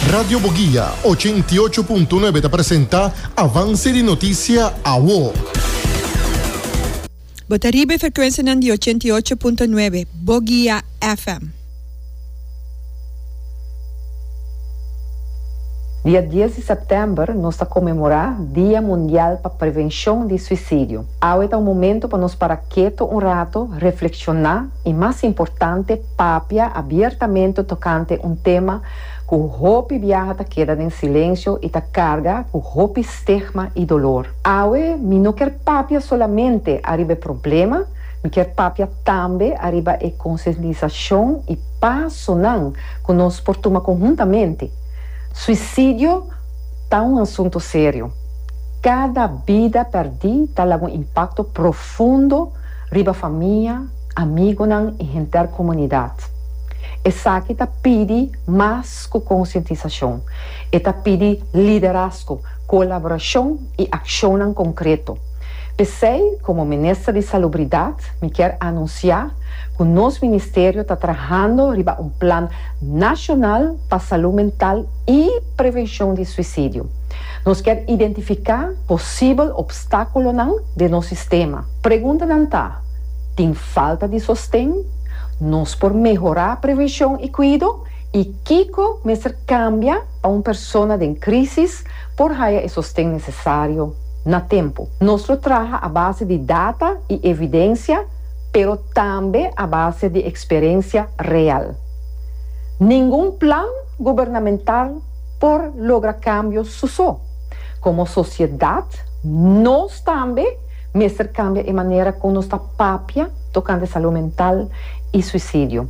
Radio Boguia, ochenta i ocho punto nuebe ta presenta avanse di notisia awo. Bo ta riba e frekuensianan di ochenta i ocho punto nuebe Boguia FM. Dia dies di sèptèmber nos ta konmemorá Dia Mundial pa Prevenshon di Suisidio. Awe ta un momentu pa nos para. Keto un rato, reflekshoná i mas importante papia abiertamente tokante un tema ku hopi biaha ta keda den silensio i ta karga ku hopi stigma i dolor. Awe mi no kier papia solamente ariba e problema, mi kier papia tambe ariba e konsientisashon i pasonan ku nos por tuma konhuntamente. Suisidio. Ta un asuntu serio. Kada bida pèrdí ta laga un impakto profundo riba famia, amigunan i henter komunidat. Esaki ta pidi mas ku konsientisashon. E ta pidi liderazgo, kolaborashon i accionnan concreto. P'esey, como Minister di Salubridad, mi kier anuncia cu nos Ministerio ta trahando riba un plan nacional pa salud mental i prevencion di suicidio. Nos kier identifica posibel obstaculonan den nos sistema. Preguntanan ta, Tin falta di sosten? Nos por mehora prevencion i cuido? I kico mester cambia pa un persona den crisis Por haya e sosten necesario na tempo. Nos lo traha a base di data y evidencia pero tambe a base di experencia real. Ningun plan gubernamental por logra cambio su so. Como sociedad nos tambe mester cambia e manera con nos ta papia tocante salud mental y suicidio.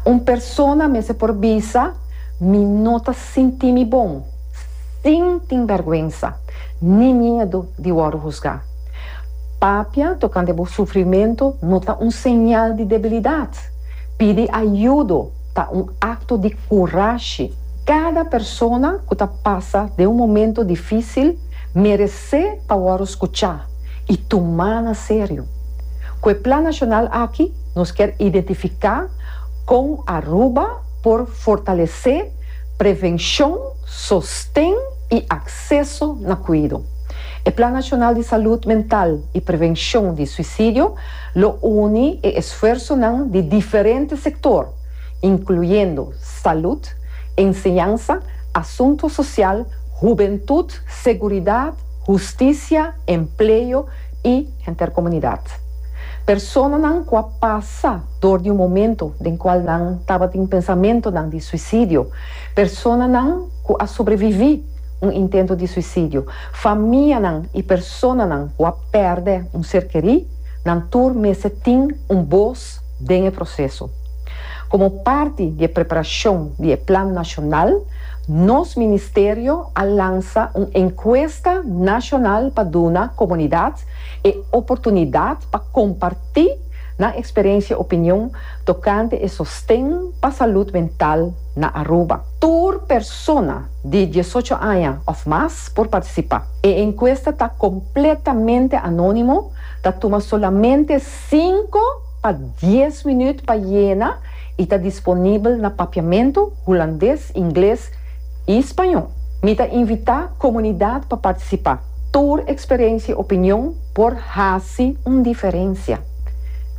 Un persona mester por bisa mi no ta. Sinti mi bon, sin tin bèrgwensa, ni miedu di wòrdu husgá. Papia tokante bo sufrimentu no ta un señal di debilidat. Pidi ayudo ta un akto di kurashi. Kada persona ku ta pasa den un momentu difísil meresé pa wòrdu skuchá i tumá na serio. Ku e Plan Nashonal aki nos kier identifiká kon Aruba por fortalesé. prevenshon, sosten i akseso na kuido. E Plan Nashonal di Salud Mental i Prevenshon di Suisidio lo uni e esfuersonan di diferente sektor, inkluyendo salud, enseñansa, asuntu sosial, hubentut, seguridat, hustisia, empleo i henterkomunidat. Personanan ku a pas. Sa dor di un momento den cual nan tabatin pensamentonan di suicidio, personanan cu a sobrevivi un intento di suicidio, famianan y personanan cu a perde un ser keri, nan tur mester tin un boz den e proceso. Como parti di e preparacion di e Plan Nacional, nos Ministerio a lansa un encuesta nacional pa duna comunidad e oportunidad pa comparti, Nan experencia opinion tocante e sosten pa salud mental na Aruba. Tur persona di diesocho aña of mas por participa. E encuesta ta completamente anonimo, ta tuma solamente cinco pa dies minuut pa yena y ta disponibel na papiamento, Hulandes, Ingles y Spañol. Mi ta invita comunidad pa participa. Tur eksperensia i opinion por hasi un diferensia.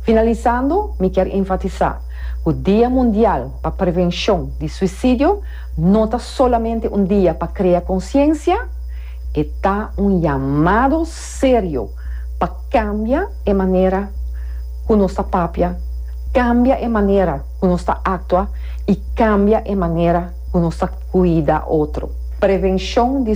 Finalisando, mi kier enfatisá ku Dia Mundial pa Prevenshon di Suisidio no ta solamente un dia pa krea konsiensia, e ta un yamado serio pa kambia e manera ku nos ta papia, kambia e manera ku nos ta aktua i kambia e manera ku nos ta kuida otro. Prevenshon di.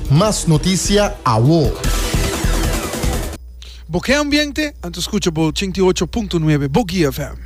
Mas noticia awo. Bo ke ambiente? Anto skucha bo ochenta i ocho punto nuebe Bogia FM.